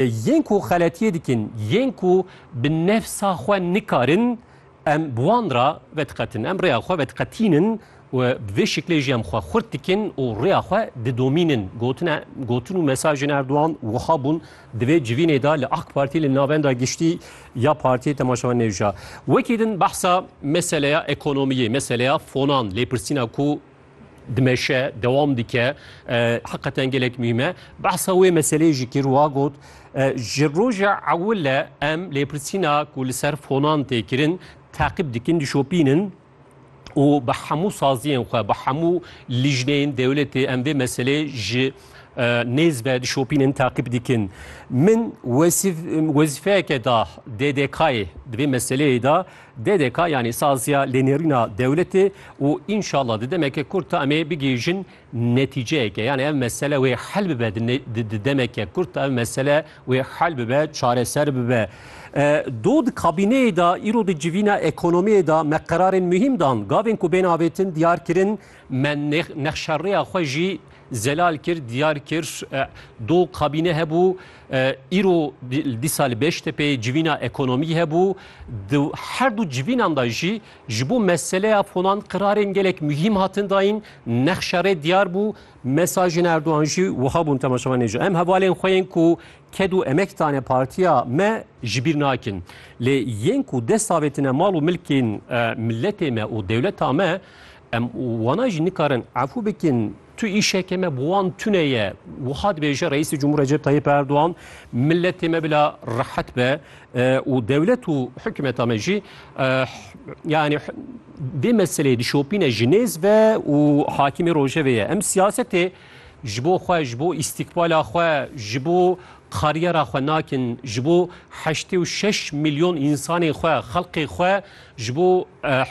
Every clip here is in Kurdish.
Yên ku xeletiyê dikin, yên ku bi nefsa xwe nikarin, em bi wan re vediqetin. Em rêya xwe vediqetînin û bi vê şiklê jî em xwe xurt dikin û rêya xwe didomînin. Gotine, gotin û mesajên Erdogan wiha bûn, Divê civînê de li AK Partî li navenda giştî ya Partiyê Temaşevan Nêvca wekî din behsa meseleya ekonomiyê, meseleya fonan, lêpirsîna ku dimeşe dewam dike heqeten gelek mîme behsa wê meseleyê jî kir wa got ji roja ewile em lêpirsîna ku li ser fonan tê kirin teqib dikin dişopînin û bi hemû saziyên xwe bi hemû lijneyên dewletê em vê meselê ji nêz ve dişopînin teqib dikin min wezîfeyeke da DDK'ê di vê meseleyê da DDK yanî saziya lênêrîna dewletê û înşallah di demeke kurt de emê bigihîjin netîceyeke yanî ev mesele wê hel bibe di demeke kurt de ev mesele wê hel bibe çareser bibe. Do di kabîneyê de îro di civîna ekonomiyê de me qerarên muhîm dan. Gavên ku bên avêtin diyar kirin me nexşerêya xwe jî Zelal kir, diyar kir du kabîne hebû. Îro dîsa li Beştepê civîna ekonomî hebû. Di her du civînan de jî ji bo meseleya fonan qirarên gelek muhîm hatin dayîn. Nexşa rê diyar bû. Mesajên Erdogan jî wiha bûn temaşevanê ji em hevalên xwe yên ku ked û emek dane partiya me ji bîr nakin. Lê yên ku dest avêtine mal û milkên miletê me û dewleta me Em wana jî nikarin efû bikin. Tu îşeke me bi wan tune ye. Wiha dibêje Reîsê Cumhur Recep Tayyip Erdogan, miletê me bila rehet be û dewlet û hikûmeta me jî yani vê meseleyê dişopîne ji nêz ve û hakimê rojevê ye. Em siyasetê ji bo xwe, ji bo îstîkbala xwe, ji bo kariyera xwe nakin, ji bo heştê û şeş milyon însanê xwe, xelkê xwe Ji bo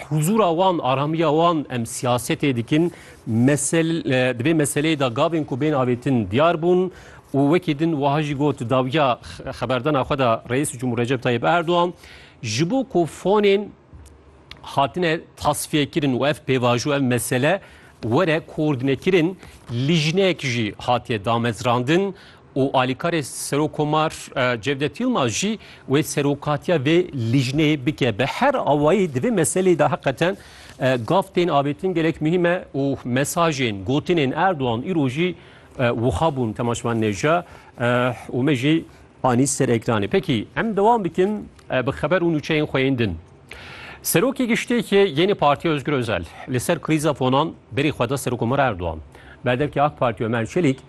huzûra wan, aramiya wan em siyasetê dikin. Mesel, di vê meseleyê de gavên ku bên avêtin diyar bûn û wekî din wiha jî got dawiya xeberdana xwe de Reîs Cumhur Recep Tayyip Erdogan ji bo ku fonên hatine tasfiyekirin û ev pêvajo ev mesele were koordînekirin lîjnek jî hatiye damezrandin û alîkarê Serokkomar Cevdet Yilmaz jî wê serokatiya vê lîjneyê bike. Bi her awayî di vê meseleyê de heqeten gav tên avêtin gelek muhîm e û mesajên, gotinên Erdogan îro jî wiha bûn temaşvan nêja û me jî anî ser ekranê. Pekî em dewam bikin bi xeber û nûçeyên xwe yên din. Serokê Giştiyekê yênê Partiya Ozgur Ozel li ser krîza fonan berî xwe da Serokkomar Erdogan. Berdevkê AK Partî Omer Çelîk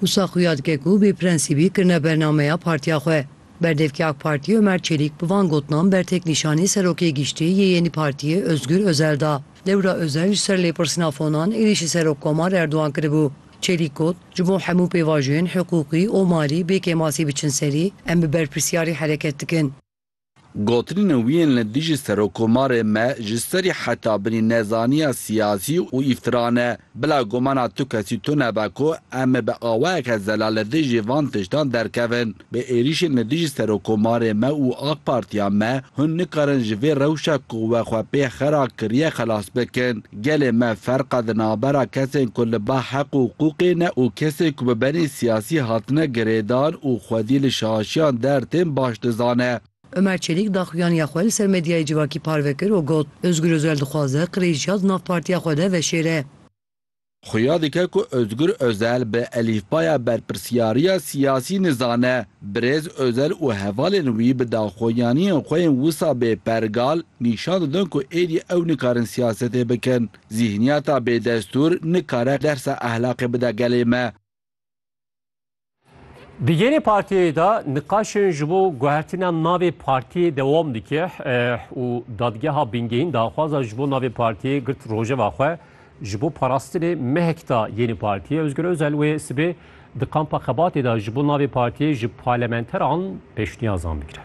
Wisa xuya dike ku bê prensîbî kirine bernameya partiya xwe. Berdevkê AK Partî Omer Çelîk bi van gotinan ber têknîşanî Serokê Giştî yê yenî partiyê Ozgur Ozel da. Dewra Ozel ji ser lêpirsîna fonan êrîşî ser Rokkomar Erdogan kiribû. Çelîk got, Ji bo hemû pêvajoyên hiqûqî û malî bê kêmasî biçin serî, em bi berpirsiyarî hereket dikin. Gotinên wî yên li dijî Serokomarê me ji serî heta binî nezaniya siyasî û îftira ne. Bila gumana tu kesî tune be ku em ê bi awayeke zelal li dijî van tiştan derkevin. Bi êrîşên li dijî Serokomarê me û AK Partiya me hûn nikarin ji vê rewşa ku we xwe pê xera kiriye xelas bikin. Gelê me ferqa di navbera kesên ku li ba heq û huqûqê ne û kesên ku bi benê siyasî hatine girêdan û xwedî li şaşiyan der tên baş dizane. Ömer Çelik daxuyaniya xwe li ser medyayê civakî parve kir û got, Ozgur Ozel dixwaze qirêjiya di nav partiya xwe de veşêre. Xuya dike ku Ozgur Ozel bi elîfbaya berpirsiyariya siyasî nizane. Birêz Ozel û hevalên wî bi daxuyaniyên xwe yên wisa bêpergal nîşan didin ku êdî ew nikarin siyasetê bikin. Zîhniyeta bêdestûr nikare dersa ehlaqê bide gelê me. Di gelê partiyê de niqaşên ji bo guhertina navê partiyê dewam dike û dadgeha Bingehîn daxwaza ji bo navê partiyê girt rojeva xwe Ji bo parastinê mehek da yênî partiyê, Ozgur Ozel wê sibê di kampa xebatê de ji bo navê partiyê ji parlementeran pêşniyazan bigire.